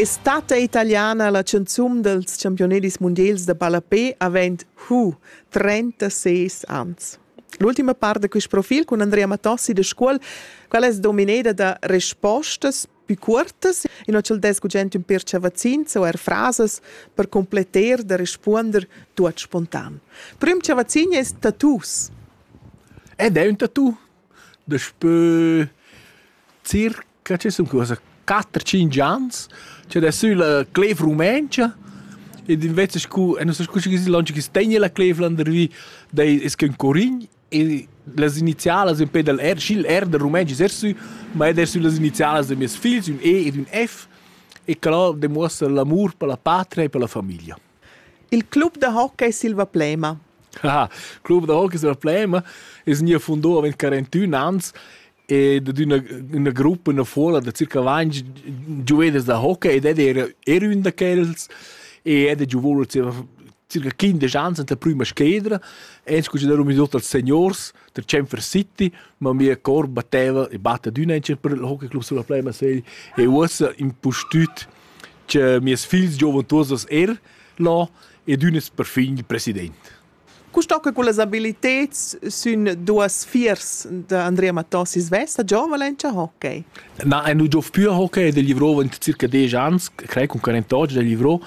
Estate italiana la canzun dels championedis mundials da ballapé avent hu 36 ans. L'ultima part da quest profil con Andrea Matossi de Scuol, qual es domineda da respostas più cuortas e non c'el des gugent un pirce vaccins o er frasas per completer da respuonder tuot spontan. Prüm cha vaccin es tattoos. Ed è un tattoo? Daspö circa chi sun cusa quatter tschinch ans cha da sülla clev rumentscha ed invece scu e nu so scu schi chi lönch chi's tegna la clev landervi d'ei es que ün curign e las inizialas impè dal R schi'l R dal rumentsch es er sü, ma ed er sü las inizialas da mieus figls, ün E ed ün F e que là demuossa l'amur per la patria e per la famiglia. Il club da hockey Silva Plema. Ah, club da hockey Silva Plema es gnü fundà avant 41 ans ed d'üna üna gruppa üna fuola da circa 20 giuveders da hockey ed era era ün da quels e ed ha giovù circa 15 ans anta prüma schedra e scu chi darum tuot als seniors da Chamfer City ma mia cor batteva e batta d'üna per il hockey club Silva Plema sei e uossa impustüt cha mieus figls giovan tuots as er là ed ün es perfin il president. Cu stocca cullas abiliteds sün duos fiers da Andrea Mattossi svesta giovane in hockey? Na, ein nu giov più a hockey e livrò in circa 10 ans, crei con 48 da livrò.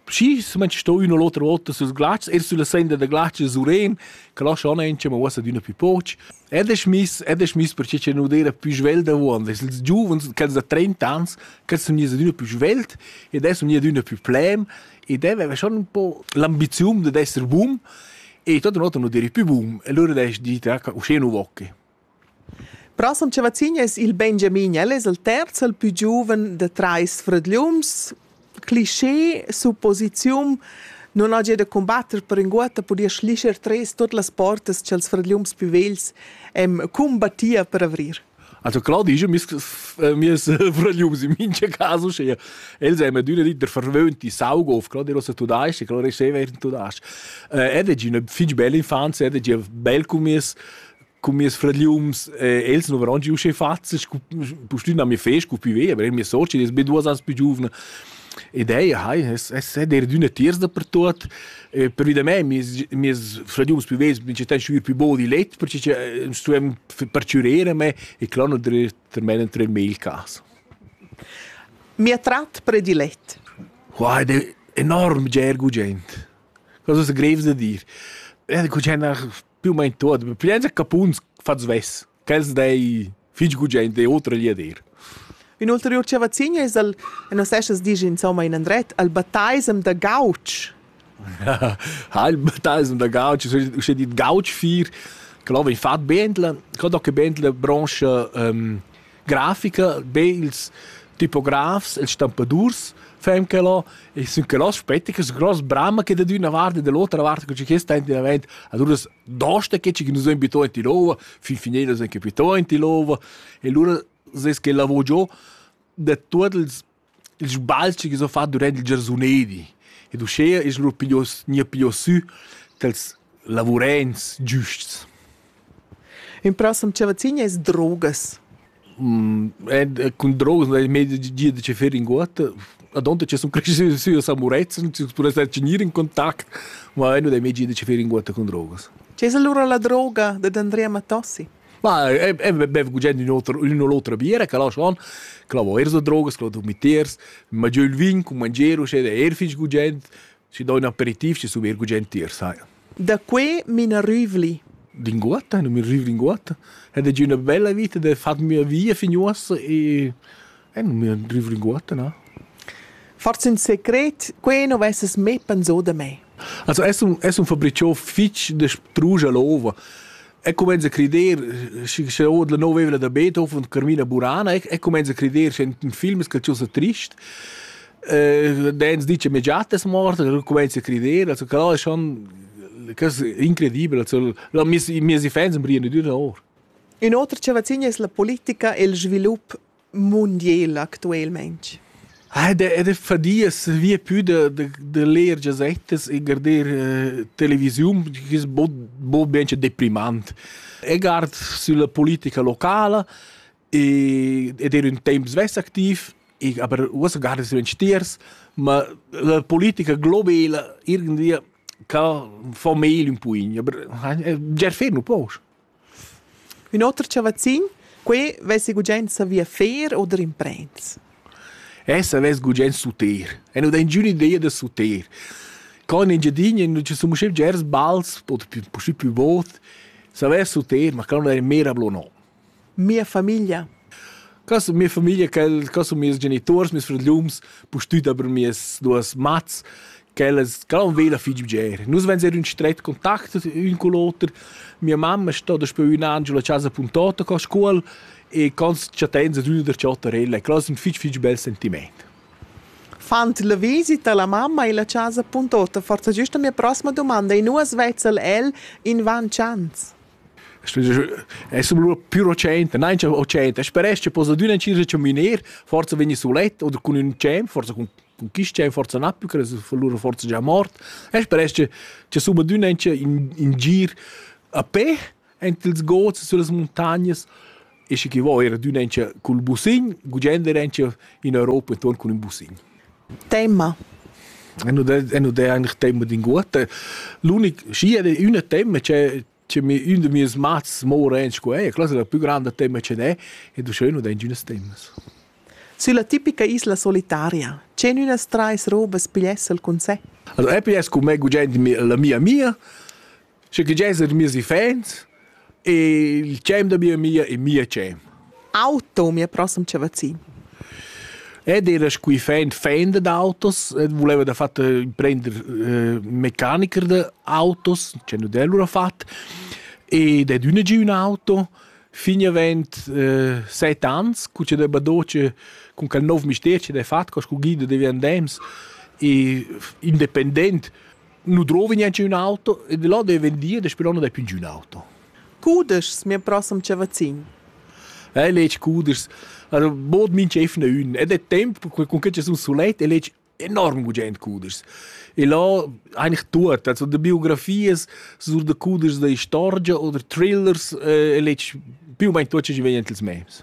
Schi se ment sto üna l'otra volta sus glatsch, er sulla senda da glatsch surren, che lascia on enche, ma uossa d'üna più poch. Ed es miss, ed es miss perche cha nu d'eira pü svelt avuond. Es ils giuvens, quels da trenta ans, quels sun gnits adüna pü svelt ed adesso sun gnits adüna pü plem ed el aveva schon un po l'ambiziun dad esser bun e tuot in ota nu d'eri pü bun e lura d'he dit ah, uschè nu vocchi. Prossem cha vacin es il Benjamin, el es il terz, il pü giuven da trais fradgliuns. cliché, supposiziun, non hagi da combatter per inguotta podia schlischer tres tot las portas ch'els fradgliums più vegls em combattia per avrir. Also klar, die ist äh, mir Frögliums in minche caso schea. Els haben düne dit der verwöhnte Saugof, klar, der was du da ist, klar, ist sehr während du da ist. Er hat eine fitch belle Infanz, er hat ein bel Kummis, Con mes fragliums, eh, els non varan giu sche fazes, scu pustün a mi fe, scu più ve, aber mia socia, die ist be duas ans più giuvna. Ed ei, hai, es, es è der d'üna tiers dappertut. Eh, per vida mei, mes, mes fragliums più vesi, mi ci ten sciuir più bo di let, perché ci eh, stuem perciurere me e clar non der termen entro il mail cas. Mi attrat predilet. Wow, ed è enorm gergo gent. Cosa greves da dir. Eh, cu c'è una più o meno tuot, piensa capuns fat svess, ch'els dei fich gugent e otra gli a dir. Ün ulteriur chavazin es al, e nos esas disch insomma in andret, al Bataisem da Gauch. ha il Bataisem da Gauch, uschè dit Gauch 4, che là vegn fat Bentla, che da che Bentla brancha, ähm, grafica, be ils tipografs, ils stampadurs fan quello e sun quello aspetta che gross brama che da d'una vart e dall'otra vart co che sta in davent ad uras dosta che ci nus abito in Tilova fin fine nus anche abito in Tilova e lura ses che lavoro giù da tutti ils Il sbalzi chi s'ho fat durant il giarsunedi ed uschea es lur piglios gnir piglios sü tals lavurents giusts. In prossem chavazzin es drogas. ed cun drogas n'hai mai gia da che fer inguotta. Adonta che sun creschü sü a San Murezzan, sü pudess star gnir in contact, ma nu dai mai gia da che fer inguotta cun drogas. Chi es allura la droga dad Andrea Matossi? Ma è bev gugent ün oter ün u l'otra biera che la schon, che la vo eir so drogas, che la do mitters, mangià ün vin cun mangier uschè è eir fich gugent, schi do ün aperitiv, schi sun eir gugent tier, sai. Da que m'ina rüvli. Linguatta, nu mi rüv linguatta. Ed è già üna bella vita da fat mia via fin uossa e En mio driv linguatta, na? Forse un secret, quei non vesses mai pensau da me. Also es un, es un fabriciò fitch de sprugia l'ova. E comenza a crider, sche od la nova evla da Beethoven und Carmina Burana, e comenza a crider, c'è un film che ci sa trist. Eh, Dance dice mia giatta è morta, comincia a credere, also quello è schon cosa incredibile, also la mia mia si fans in briene di ore. Un autre che vacina è la politica e il sviluppo mundiel actuelmaing? Ed è fadia via più da, da, da leer gazettas e guardar uh, televisiun, che è bo ben deprimant. E guard sulla politica locale e, ed era un tempo svess activ, e, aber uossa guarda su in stiers, ma la politica globale irgendwie kann von mehl un puin, aber ger fer nu poch. Ün oter chavazzin, quai vess gugent savì fer oder imprends. Essa vess gugent suter. E nu dà ingüna ideia da suter. Co in Engiadina nu ci sun uschè bgers bals oder pü puscì pü bod, savess suter, ma quel non è mera blo no. Mia famiglia. Ca sun mia famiglia, quel, ca sun mieus genituors, mieus frögliums, pustüt aber mieas duos mats, Quellas gran vela fich bger. Nus venzer ün stret contact ün cun l'oter. Mia mamma sta daspö ün an giù la chasa puntota co scuol e cons chattains ad üna der chattarella e quello es ün fich fich bel sentimaint. Fand la visita la mamma illa chasa puntota forsa giüst la mia prossima dumanda e nu as vezza'l el invan chans. Es lura più recente, nein c'è recente, speresch poss adüna incir a caminer, forsa vegni sulet oder cun ün cem, forsa cun cun quist già forsa na più cres fa lura forsa già mort e speresch che cha summa d'ün an cha in in gir a pe ant ils gods süllas muntagnas e schi chi vo eir d'ün an cha cul busin gugent er an cha in Europa intuorn cun ün busin. Temma. E nu d'è e nu d'è eigentlich temma d'inguotta. L'unic schi ed è üna temma che Cioè, mi, un de meus mats mora en scola, e quella è la più grande tema che è, e du schön und ein schönes temas. Sulla tipica isla solitaria, c'en ünas trais robas pigliessel con sé? Also, EPS con me gugent la mia mia, sche che jess er miei fans, e il cem da mia mia e mia cem. Auto, mia prossima chavazin. Ed era scu fend fender d'autos, voleva da fatta prender eh, mecaniker de autos, c'è nu dell'ura fat, ed è d'üna giü ün auto, fin avent eh, set ans, cu c'è da badoce cun quel nov mister c'è da fat, co scu guida devi andems, e independent nu drovi niente un auto e di là deve vendir e però non è più un auto. Cudeschs mir prossem ce vacin. Eh, legi cudeschs. Also, bod minch efne ün. Ed è tempo con che ci sun sulet e legi enorm gugent cudeschs. E là eigentlich tut. Also, de biografies sur de cudeschs da istorgia oder thrillers e legi più o meno tot ce ci vegn ins mems.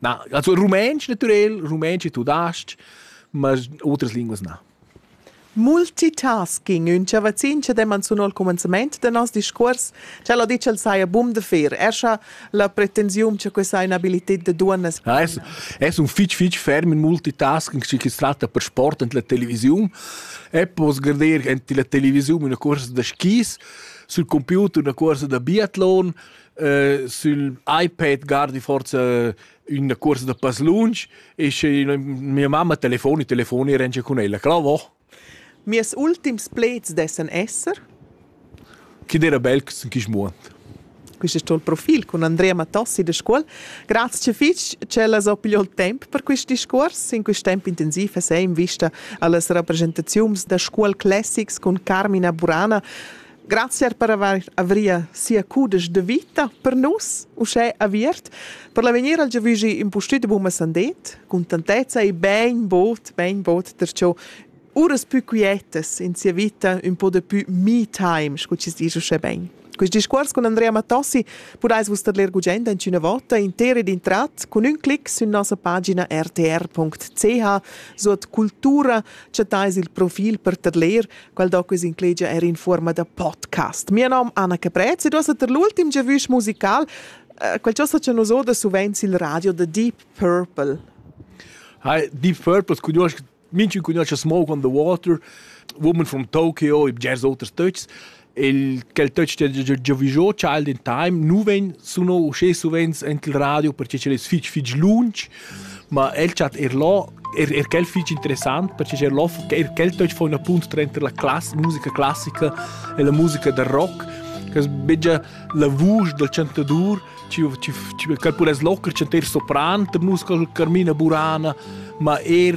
Na, also rumantsch natürel, rumantsch e tudasc, ma otras linguas na. Multitasking, ün chavazzin cha demman sun al cumenzament da noss discuors, ch'el ha dit ch'el saja bun da fer. Er scha la pretensiun cha questa ha inabilited da duonnas... Ja, es, es un fich fich ferm in multitasking, schi chi's tratta per sport ant la televisiun. E poss garder ant la televisiun üna cuorsa da skis, sul computer üna cuorsa da biatlon, äh, sul iPad guardi forza üna cuorsa da pass lunsch e sche mia mamma telefoni telefoni e rengia cun ella clavo Mies ultims pleds dessan esser Chi dera belcs in quist muond Quist es tuo profil cun Andrea Mattossi da scuol. Grazie fitg ch'ella s'ho pigliò il temp per quist discuors. In quist temp intensiv es ei in vista allas rappresentaziuns da scuol classics cun Carmina Burana Grazie per aver avria sia cudesch de vita per nus, uschè aviert, per l'avegnir al giavügi impustüt buna sandet, contentezza e ben bod, ben bod perciò uras pü quietas in sia vita un po de pü me time, scu ci dice uschè ben. Quest discuors con Andrea Mattossi podais vus ler gugent in una volta intera ed intrat con un clic su nossa pagina rtr.ch suot cultura chattais il profil per ter ler quel doc es inclegia er in fuorma da podcast. Mio nom Anna Caprez ed ossa ter l'ultim giavüsch musical uh, quel chosa cha nus oda suvenz il radio The Deep Purple. Hi, Deep Purple cugnuosch minchun cugnuosch Smoke on the Water, woman from Tokyo, i bgers oters töchs. Il quel töch che giavüschò Child in Time, nu vegn suno usché suvenz ent il radio perché ch'el es fich fich lunch Ma el chat er là er, er quel fich interessant perche er là er quel töch fa üna punt tranter la class, musica classica e la musica da rock che es begia la vusch dal chantadur ci ci ci quel pudess locher chanter sopran da musica carmina burana ma er